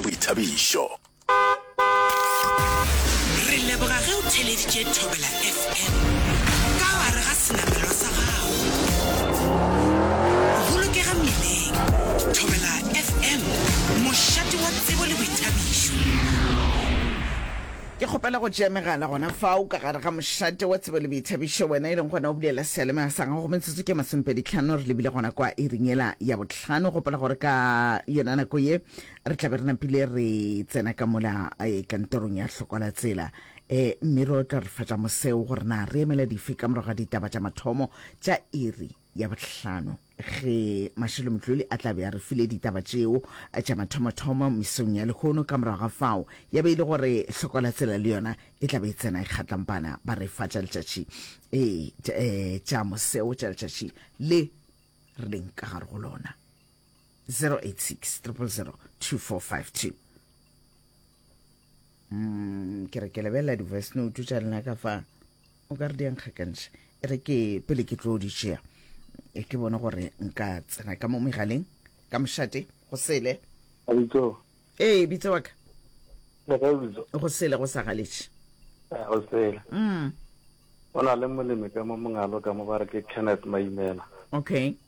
Boithabišo. Re leboga ge o theleditše Thobela FM ka gare ga senamelwa sa gago. Bolokega mmileng. Thobela FM, mošate wa tsebo le boithabišo. Ke kgopela go tšea megala gona fao ka gare ga mošate wa tsebo le boithabišo, wena e leng gona o bulela seyalemaya sa gago. Metsotso ke masomepedi tlhano re lebile gona kwa iring yela ya botlhano. Gopola gore ka yona nako ye re tlabe re napile re tsena ka mola eh, kantorong ya hlokola tsela eh, mme ro tla re fatša moseo gore na re emela dife ka morago ga ditaba tša mathomo tša iri ya bohlano ge mašelo motloli a tlabe a re file ditaba tšeo tša mathomothomo mesong ya lehono ka morago ga fao ya be e le gore hlokola tsela le yona e tlabe e tsena e kgatlampana ba re fa tša letšatši ee tša moseo tša letšatši le re leng ka gare go lona 086 000 2452 mm, ke re ke lebelela di-voice note tša lena ka fa o ka re di ankgakantšha e re ke pele ke tlo di tšea e ke bone gore nka tsena ka mo megaleng ka mošate go sele ee bitse wa ka go sele go sa galetše eh, go sele mm. o na le molemi ka mo mongalo ka mo ba re ke kenneth maimela okay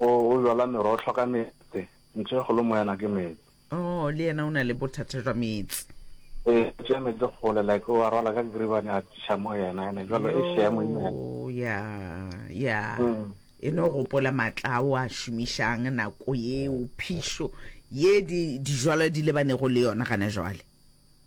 O, o jala merohlo ka meetse. Ntho e kgolo moyana ke meetse. Oo, le yena o na le bothata jwa meetse. E, o tšea meetse kgole, like o a rwala ka geribane a tliša mo yena, ene jalo e šea moimana. Yoo, ya, ya. Mm. E no gopola maatla ao a šomišang nako yeo, phišo ye di, dijwalwa di lebanego le yona gana jwale.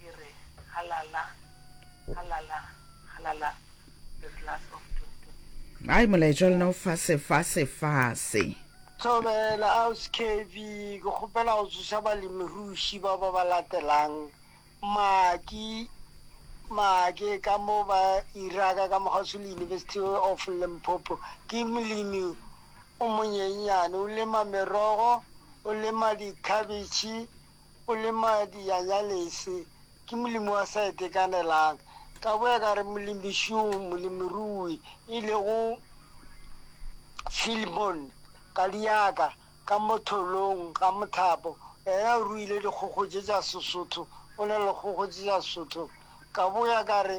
e re, Halala, halala, halala, the glass of doom to me. Ai molaetšwa lena o fase fase fase. Thobela, Ausi Kevy, ke kgopela go tsoša balemiruši ba ba ba latelang, Maki, Maki ka mo ba Iraka ka mokgwaso le University of Limpopo. Ke molemi o monyenyane, o lema merogo, o lema dikhabetšhe, O le madi ya nyalese, ke molemi wa sa itekanelang. Ka boya ka re molemišung, molemirui, e lego Filmon, kadiaka, ka mo tholong ga mothapo, yena o ruile dikgokgo tše tša Sesotho, o na le dikgokgo tše tša Sesotho. Ka boya ka re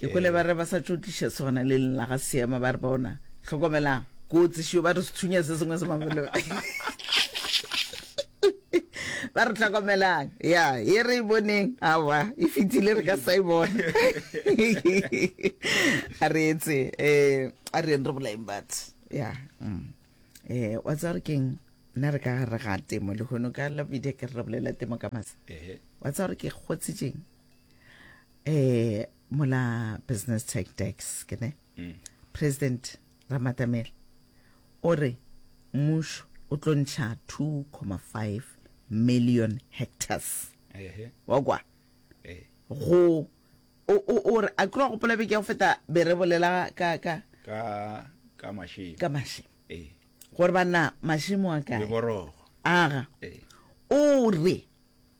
Ke kwele ba re ba sa tšo tliša sona le lela ga seema ba re bona tlhokomelang kotsi šio ba re sethunya se sengwe se mabelo ba re tlhokomelang ya e re e boneng awa e fetile re ka sa e bona a re etse um a re re bolaeng batho ya um eh, wa tsaya gore keng nna re ka gare ga temo le gono ka labide ke re re bolela temo ka masa wa tsaya gore ke kgotsitseng eh mola business tech tax ke ne mm. president ramatamela o re mmušo o tlo ntšha 2,5 million hectares wa kwa eh. go o re a tloga gopola beke ya go feta be re bolela ka ka ka mašemo ka mašemo eh. gore banna mašemo a kae aga eh. o re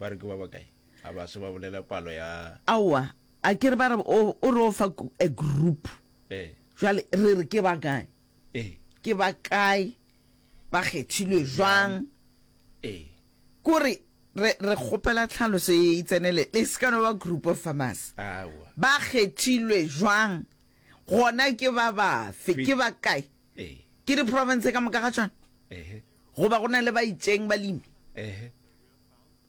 Ba re ke ba bakae? A ba se ba bolela palo ya. Aowa, a ke re ba re o, o re o fa ku, a group. Ee. Jwale re re ke ba kae? Ee. Ke ba kae? Ba kgethilwe jwang? Ee. Ke gore re, re kgopela tlhaloso e, e tsenele, le se ka no ba group of farmers. Aowa. Ba kgethilwe jwang? Gona ke ba bafe? Ke ba kae? Ee. Ke di-province ka moka ga tšona? Ehe. Goba go na le ba itšeng balemi? Ehe.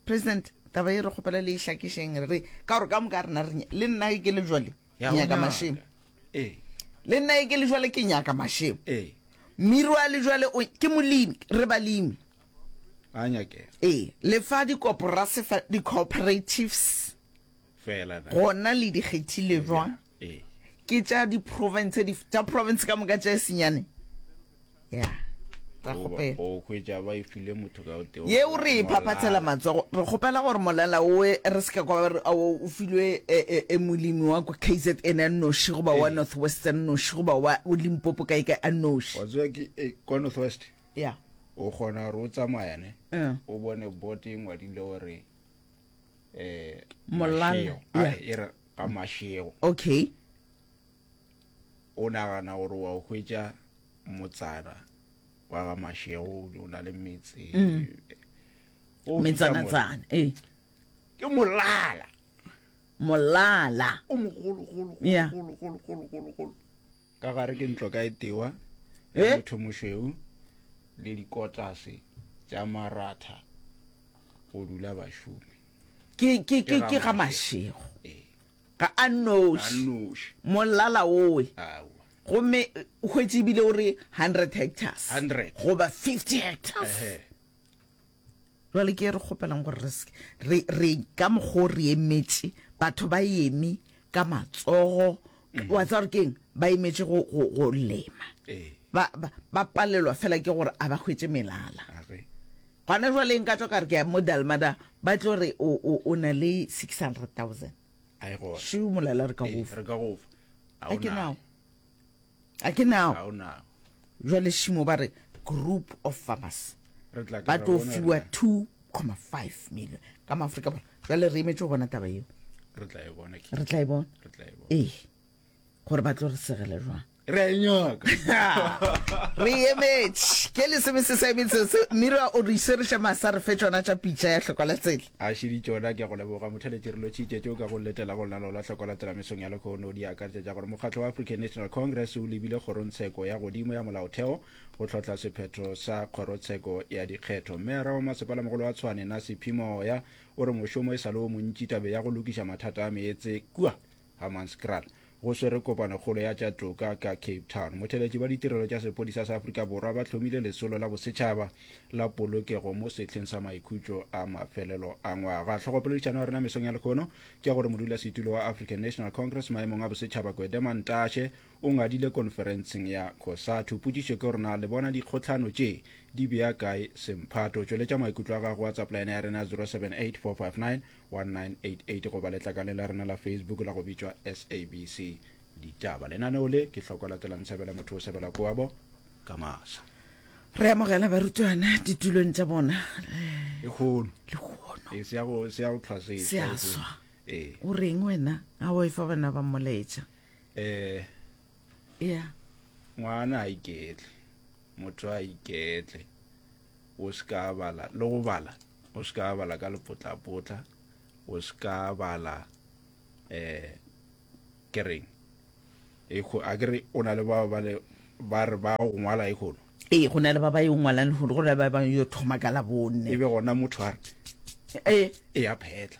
president taba e re kgopela le e hlakišeng re re ka gore ka moka rena re le nna e ke le jwale ke Ya go nyaka nyaka. mašemo ee le nna e ke le jwale ke nyaka mašemo ee mmiri wa le jwale o- ke molemi re balemi a nyakela ee le fa dikoporase fa di-cooperatives fela na gona le di kgethile jwang ke tša di province di tša province ka moka tša senyane ya ra kgopela o hwetša ba e file motho ka teo ye o re phaphathela matsogo re kgopela gore molela o re se ka kwa re o filwe e, e, e molemi wa ko KZN a noši goba wa northwestern noši goba wa o limpopo kae kae a noši wa tswa ke e, kwa northwest ya o kgona gore o tsamayane o bone bote ngwadile gore eh molala e re ga mashego okay o nagana gore wa o hwetša motsana wa ga mashego o na le metse mm. metsanatsana e eh. ke molala molala o mogologologologologologologolo ka gare ke ntlo ka etewa ya eh? motho mošweu le dikotlase tša maratha go dula bašomi ke ga mašego eh. ga a noši molala owe gomme hwetse ebile o re hundred hectares goba fifty hectares Jwale ke re kgopelang gore re se re re ka mokgo re emetše batho ba eme ka matsogo mm. wa tsa gore keng ba emetše go go go lema eh. ba ba palelwa fela ke gore a ba hwetse melala gona jwa leng ka tswa ka re ke mo dalmada ba tlo re o o o na le 600000 ai go shu molala re ka go eh, re ka go a ke nao a ke nao jwale šimo ba re group of farmers ba tlo fiwa 2,5 million ka maaforika borwa jwale re emetše go bona taba eo re tla e bona ee gore ba tlo re segele jwang re nyoka re emetše ke le sebe se sa emetse se mira o re isereša masa re fe tsona tša pitša ya tlhokola tsele A šedi tšona ke a go leboga motheletši re lotšitše tšeo ka go letela go lalo la hloko latela mesong ya lehono di akaretša tša gore mokgatlo wa African National Congress o lebile kgorongtsheko ya godimo ya molaotheo go tlhohla sephetho sa kgorotsheko ya dikgetho mmeyara wa masepalamogolo wa Tshwane Nasiphi Moya o re mošomo e sa le o montši tabe ya go lokiša mathata a meetse kua Hammanskraal go swere kopanokgolo ya tša toka ka Cape Town. Motheletši wa ditirelo tša sepodisa sa Afrika Borwa ba hlomile lesolo la bosetšhaba la polokego mo sehleng sa maikhutšo a mafelelo a ngwaga. Hlogopoledišano ya rena mesong ya lekhono ke ya gore modulasetulo wa African National Congress maemong a bosetšhaba Gwede Mantashe o ngadile konferenseng ya Cosatu. Potšišo ke gore na le bona dikgohlano tše di bea kae semphato? Tšweletša maikutlo a gago WhatsApp line ya rena 078459 1988 goba letlakaleng la rena la facebook la go bitšwa sabc ditaba lenaneo le ke hloko latelang sebele motho o sebela koabo ka masa re amogela barutwana ditulong tša bona e kgono le kgono e se ya go se ya go tlhwasesa se a swa e o reng wena ga o e fa bana ba moletša eh ya ngwana a iketle motho a iketle O se ka bala le go bala. O se ka bala ka lepotlapotla. O se ka bala um ke reng a ke re o na le ba ba le ba re ba go ngwala e kgono ee go na le ba ba yo ngwalang lehono go na le ba ba yo thoma ka labone e be gona motho a re ee e a phetla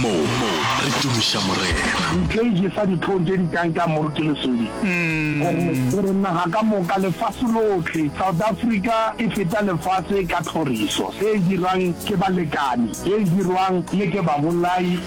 Mo re tumiša Morena. Ntle e jesa ditlhong tše di tlang ka moru ke lesodi. Gore naga ka moka, lefase lohle, South Africa e feta lefase ka tlhoriso, ye e dirwang ke balekani, ye e dirwang le ke babolai.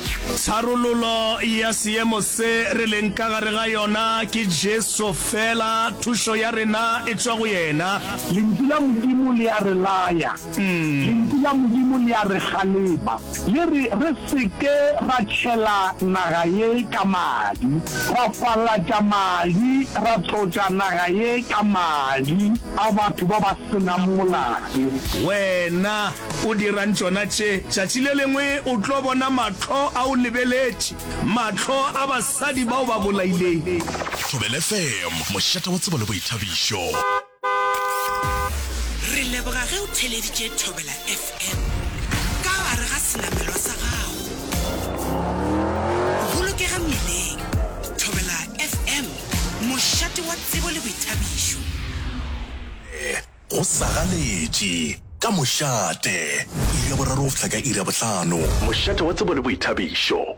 Tharololo ya seemo se re leng ka gare ga yona ke Jesu fela, thušo ya rena e tšwa go yena. Lentšu la Modimo le a re laya. Lentšu la Modimo le a re kgalema, le re re se ke ra tšhela naga ye ka madi, ra falatša madi, ra tlotša naga ye ka madi a batho ba ba se nang molato. Wena o dirang tšona tše? Tšatši le lengwe o tlo bona mahlo a o lebeletše, mahlo a basadi ba o ba bolailego. Thobelfm, mošate wa tsebo le boithabišo. Re leboga ge o theleditše Thobela FM ka gare ga senamelwa sa gago. Bolokega mmileng. Thobela FM, mošate wa tsebo le boithabišo. Go sa ganetše ka mošate. Iri ya boraro go fihla ka iri ya bohlano. Mošate wa tsebo le boithabišo.